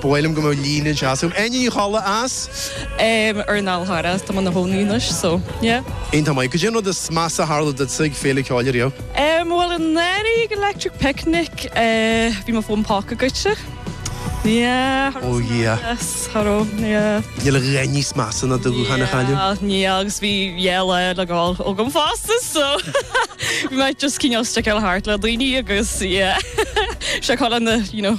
Ba mhaith liom go mbeadh líne anseo asam. Áine Ní Cholla as. Ar an Fhál Charrach atá mé i mo chónaí anois, so, yeah. Iontach maith. Cad é an rud is measa a tharla duitse ag Féile Ceoil riamh? Bhuel, anuraidh ag Electric Picnic, bhí mo fón póca goidte. Yeah, thar Oh, yeah. Yes, thar ó, yeah. Níl a dhath níos measa ná do ghuthán a chailleadh. Yeah, ní agus bhí yeah le le gabháil abhaile fosta so bhí mé just cinneál stick ar thart le daoine agus yeah. Se chola na you know.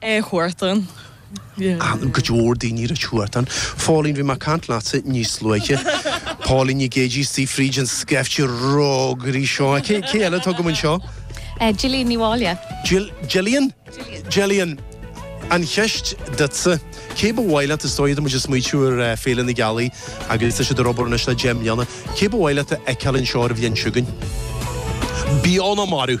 Chuartan. Aithne ag go leor daoine ar Chuartan. Phóilín, bhí mé ag caint leatsa níos luaithe. Póilín Nic Géidigh istigh fríd an scaifte rógairí seo. Cé cé eile atá agam anseo? Gillian Ní Mháille. Jill Gillian? Gillian. Gillian, an cheist duitsa, cé ba mhaith leat, is dóigh tá muid ag smaoitiú ar Féile na Gealaí agus tá siad ag obair anois le deich mbliana, cé ba mhaith leat a fheiceáil anseo ar an bhliain seo chugainn? Bionn á marú!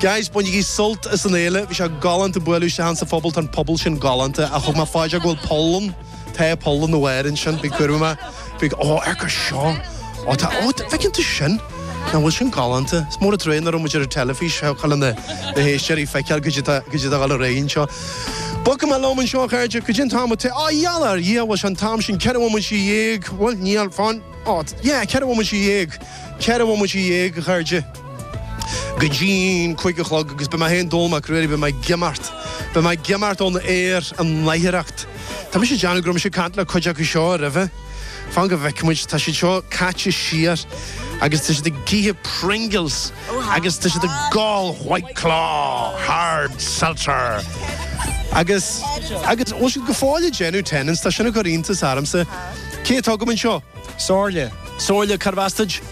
Guys, bainigí sult as an fhéile. Bhí sé galánta bualadh libh sa phobal. Tá an pobal sin galánta. Ach thug mé fá dear go bhfuil puball, tá puball na bhfear ansin. Bhí cuireadh mé. Bhí, ó, ar go seo. Ó, tá, ó, feiceann tú sin? Ná bhfuil sin galánta. Is mór an trua nach bhfuil muid ar an teilifís go dtig le na héisteoirí feiceáil caidé tá, caidé tá ag dul ar aghaidh anseo. Bogfaidh mé liom anseo a chairde caidé an t-am a t-, á, dhealbh ar Dhia, bhfuil sé an t-am sin ceithre bhomaite dhéag, bhuel, níl, fáin, ó, yeah, ceithre bhomaite dhéag, ceithre bhomaite dhéag a chairde. go dtí'n cúig a chlog agus beidh mé fhéin Dónall Mac Ruairí, beidh mé ag imeacht, beidh mé ag imeacht ón aer an láithreacht. Tá mise ag déanamh go raibh mise ag caint le cuid acu seo roimhe, fan go bhfeicfidh muid, tá siad seo caite siar agus tá siad ag ithe Pringles agus tá siad ag ól White Claw Hard Seltzer agus, agus bhfuil siad go fóill ag déanamh Tennent's, tá sin ag cur iontas ormsa. Cé atá agam anseo? Somhairle. Somhairle, carb as duit?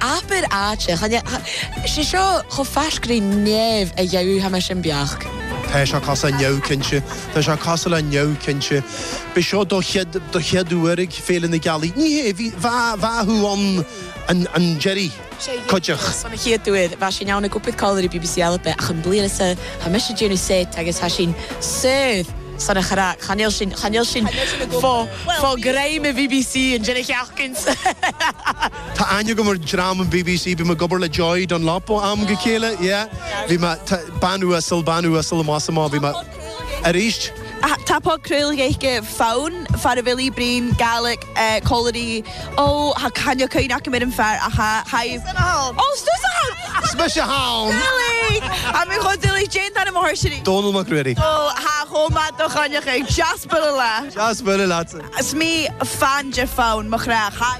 Abair áit é. Is é seo chomh faisg ri nèamh a gheibh, tha mise am beachd. Tá sé cos a' neamh cinnte. Tá sé cosúil le neamh cinnte. B'é seo do chéad do chéad uair ag Féile na Gealaí. Ní hé, bhí bheadh bheadh thú ann an-uiridh, cuideach. San a chéad uair bheadh sí in ann ag oipiad codhladh ar bbc Alba ach an bliain is a' tá mise ag déanamh seit agus tá sí soir san a chrac. Cha níl sin cha níl sin fo fo greim i bbc an deireadh sheachdain. Tá aithne agam ar dhream an BBC, bhí mé ag obair le Joy Dunlop ó am go chéile, yeah, bhí mé, tá, bean uasal, bean uasal i Más Iomána, bhí mé, arís. Tá Págh Crúill Gaeilge fonn, fear a bhfilí Brian, Gaelic, eh, Colliery, ó, thá cainne caoin acu ar an bhfear, a thá, thá, Is mise thall! Ó, 's tusa thall! 's mise thall! Gaelic! Thá mé cho duilich, déan d'fhear an mháthair sin í. Dónall Mac Ruairí. Ó, thá, chomh maith do chainne caoin, deas bualadh leat! Deas bualadh leatsa! 's mé fán de fonn, mo chreach, thá.